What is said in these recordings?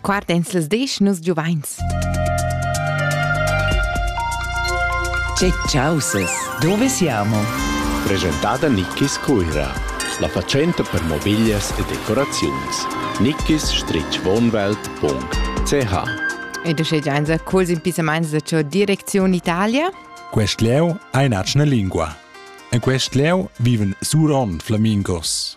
Guarda ins las desch nus giuvains. Che chausas, dove siamo? Presentada Nickis Cuira, la fatschenta per mobiglias e decoraziuns. nickis-wohnwelt.ch Ed uschè giains a culs impissamaints da cho Direcziun Italia. Quest leu ei natschna lingua. En quest leu viven surond flamingos.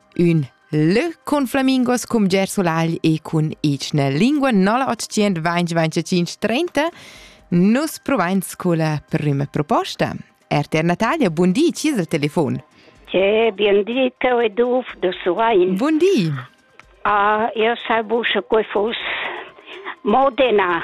Ün lö cun flamingos cum gersulagl e cun ichna lingua nolla otschient vainch vaintacinch trenta nus provains culla prüma proposta. RTR Natalia, bun di, chi es il telefon? Che bien di, teu e Duf du Suain. Bun di. Uh, io salvo che fus Modena.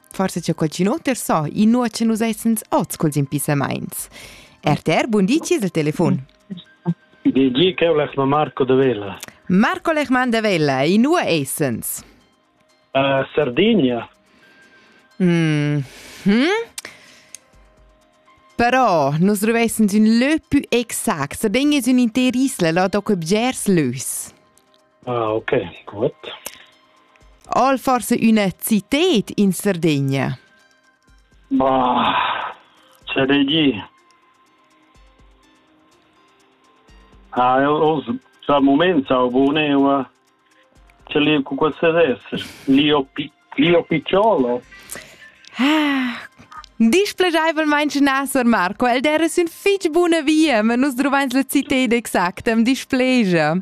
Forse c'è qualcuno ter so, i nu che nus essens oz culs impissamaints. RTR, bun di, ci il telefon. Di che ho Marco de Vella. Marco Lechmann de Vella, i nu essens. Uh, Sardegna. Mm -hmm. Però nus dovessens un lö più exact, se ben es un inter isla, là doc bgers lös. Ah, ok, gut. Al forse üna cited in Sardegna? Ma, c'è dei di. Ah, eu, eu già moments au boneu ce li cu queste resse. Lio, pi, Lio Picciolo. Ah, displegaivelmente nasser Marco, el dera sün fich buna via, ma nus drovains la cited exacta, am displegia.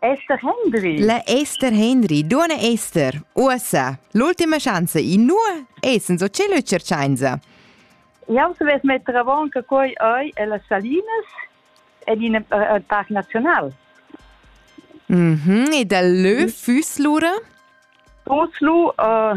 Esther Hendry. La Esther Hendry, duona Esther, uossa, l'ultima schanza, inua essens o celo e cerchainza? Jau savess metter avant che quai ei e las salinas ed in uh, parc naziunal. Mm -hmm. E dal lö füss lura? Füss lu uh,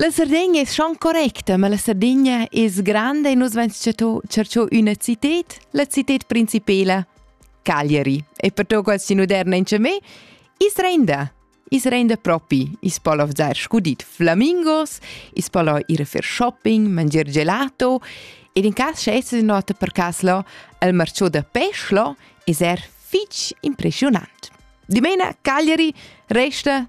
La Sardegna es schon correcta, ma la Sardigna es granda e nus vain tschercho üna cited, la cited principela, Cagliari. E per to quasi moderna in me, is renda. Is renda propi, is polo vzar scudit flamingos, is polo ir a fer shopping, mangiar gelato, ed in cas sche es nota per caslo il marciò da peslo, is er fitch impressionant. Dimena Cagliari resta